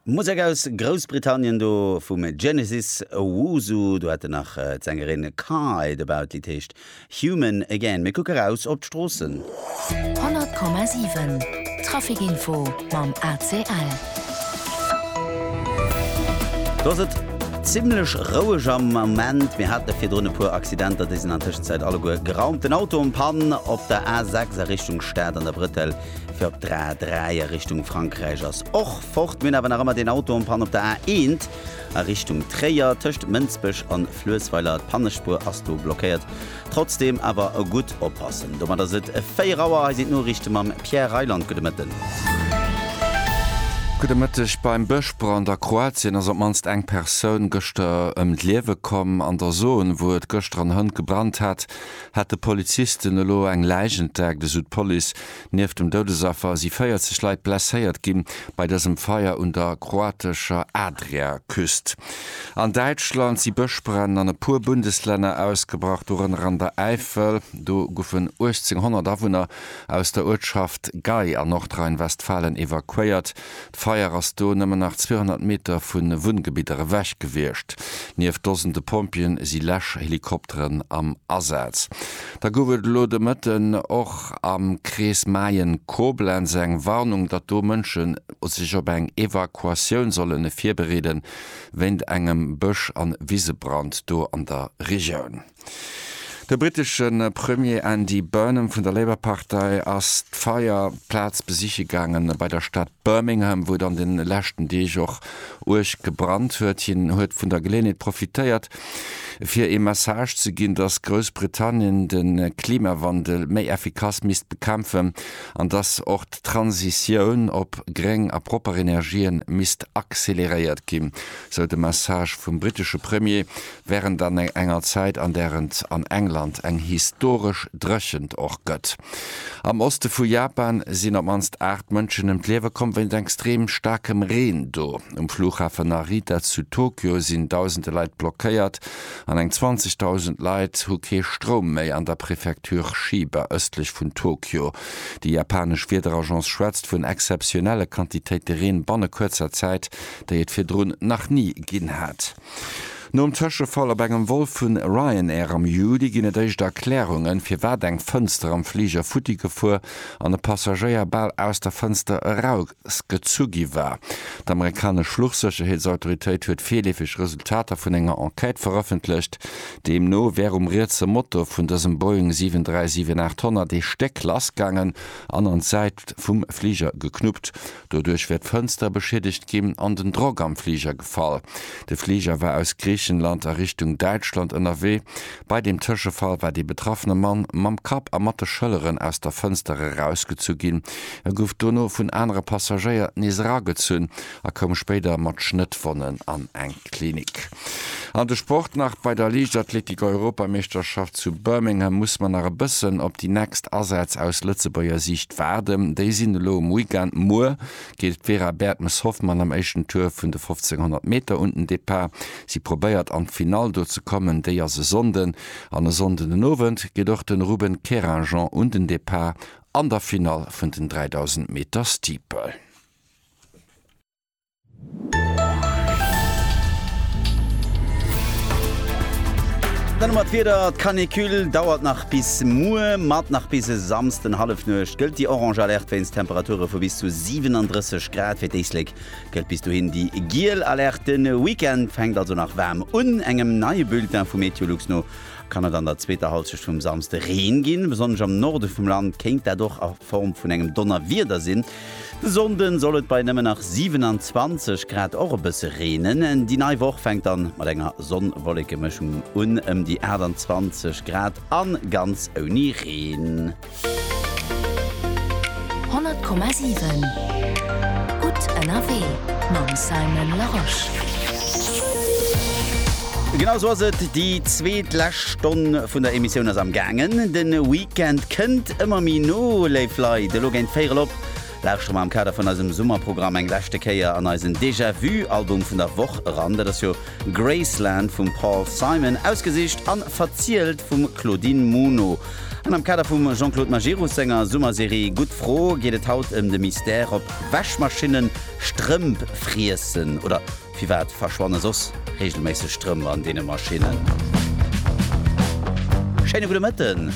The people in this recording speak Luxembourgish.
Musek aus Groussbritannien do vum Genesis Owusu. Do hat en nach d'Sängerin Kai dobau. D'Lidd heescht Human Again. Mir kucke raus op d'Stroossen. 100,7 Trafic Info mam ACL. Do ass et zimlech roueg am Moment. Mir hate virdrun e puer Accidenter, déi sinn an Tëschenzäit alleguer geraumt. Den Auto en Panne op der A6 a Richtung Stad an der Bretel. fir op d'A3 a Richtung Frankräich ass och fort. Mir hunn awer nach ëmmer deen Auto en panne op der A1 a Richtung Tréier, tëscht Mënsbech an Fluessweiler. D'Pannespuer ass do blockéiert. Trotzdeem awer gutt oppassen. Domat ass et 4 Auer. Hei sinn d'Noriichte mam Pierre Reyland. Gudde Mëtten. Gudde Mëtteg. Beim Bëschbrand a Kroatien ass op d'mannst eng Persoun gëschter ëm d'Liewe komm. An der Zone, wou et gëschter an Hënt gebrannt hat, hat de Polizisten elo eng Läich entdeckt, esou d'Police. Nieft dem Doudesaffer si 40 Leit blesséiert gi bei dësem Feier un der kroatescher Adriaküst. An Däitschland si Bëschbränn an e puer Bundeslänner ausgebrach, dorënner an der Äifel. Do goufen 1.800 Awunner aus der Uertschaft Gei a Nordrhein-Westfalen evakuéiert. D'Feier ass do nëmmen nach 200 Meter vu Wunngebidder ewech gewiescht. Nieft Dosende Pompjeeën si Läschhelikopteren am Asaz. Da gouf et elo de Mëtten och am Krees Mayen-Koblenz eng Warnung, datt do Mënschen sech op eng Evakuatioun sollen virbereeden, wéint engem Bësch an Wisebrand do an der Regioun. De brittesche Premier Andy Burnham vun der Labour-Partei ass d'Feierplaz besiche gaangen, bei der Stad Birmingham, wou et an de leschten Deeg och uerg gebrannt huet. Hien huet vun der Geleeënheet profitéiert, fir ee Message ze ginn, datt Groussbritannien de Klimawandel méi effikass misst bekämpfen an datt och d'Transitioun op gréng a propper Energië misst acceleréiert ginn, sou de Message vum brittesche Premier. wärend an enger Zäit an där et an England eng historesch Dréchent och gëtt. Am Oste vu Japan sinn op d'mannst 8 Mënschen ëm d'Liewe komm wéinst extrem staarkem Reen do. Um Flughafen Narita zu Tokio sinn dausende Leit blockéiert an eng 20.000 Leit hu kee Stroum méi. An der Prefektur Chiba ëstlech vun Tokio, déi japanesch Wiederagence schwätzt vun exzeptionelle Quantitéite Reen banne kuerzer Zäit, déi et virdrun nach ni ginn hat. Nom Tëschefall op engem Vol vu Ryanair am Juli ginn et éischt Erklärungen, firwat eng Fënster am Fliger futti gefuer an e Passagéier bal aus der Fënster erausgezu gi war. D'amerikanesch Fluchsécherheetsautoritéit huet virleefeg Resultater vun enger Enquête verëffentlecht. Deemno wär um rietse Motor vun dësem Boeing 737-800 ee Stéck lass gaangen an an d'Säit vum Fliger geknuppt. Doduerch wär d'Fënster beschiedegt ginn an den Drock am Fliger gefall. De Fliger war aus Griichenland a Richtung Däitschland ënnerwee. Bei deem Tëschefall war dee betraffene Mann mam Kapp a mat de Schëlleren aus der Fënster erausgezu ginn. E gouf dono vun anere Passagéier nees eragezunn a koum spéider mat Schnëttwonnen an eng Klinik. An de Sport nach, Bei der Liichtathletik-Europameeschterschaft zu Birmingham muss mer nach e bëssen op déi nächst Asätz aus Lëtzebuerger Siicht waarden. Déi sinn elo um Weekend. Muer geet d'Vera Bertmes-Hoffmann am éischten Tour vun de 1500 Meter un den Depart. Si probéiert an d'Finall do ze kommen, déi ass e Sonnden. An e Sonnden den Owend geet och de Ruben Querinjean un den Depart an der Finall vun den 3000 Meter Steeple. Dann hu mer d'Wieder, d'Canicule dauert nach bis muer, mat nach bis e Samsden Hallefnuecht gëllt déi orange Alerte wéinst Temperature vu bis zu 37 Grad fir d'Éislek, gëllt bis dohin déi giel Alerte. Den Weekend fänkt also nach waarm un. Engem neie Bulletin vu Meteolux no kann et an der zweeter Hallschecht vum Samsde Reen ginn. Besonnesch am Norde vum Land kéint dat och a Form vun engem Donnerwieder sinn. De Sonnden soll et bei nëmmen nach 27 Grad och e bësse reenen. Déi nei Woch fänkt dann mat enger Sonn-Wolleke-Mëschung un, ëm déi 28 Grad an ganz ouni Reen. 100,7 gutt ënnerwee mam Simon Laroche. Genau sou ass et, déi zweetlescht Stonn vun der Emissioun ass am gaangen. Den Week. D'Gend kënnt ëmmer méi no, léif Leit. Elo géint véierel op lauschtere mer am Kader vun eisem Summerprogramm eng leschte Kéier an eisen Déjà-Vu-Album vun der Woch eran. Dat ass jo Graceland vum Paul Simon, ausgesicht a verzielt vum Claudine Muno. An am Kader vum Jean-Claude Majerus senger Summerserie Gutt Fro geet et haut ëm de Mystère, ob Wäschmaschinne Strëmp friessen oder Firwat verschwanne soss reegelméisseg Strëmp an deene Maschinnen? Schéine gudde Mëtten.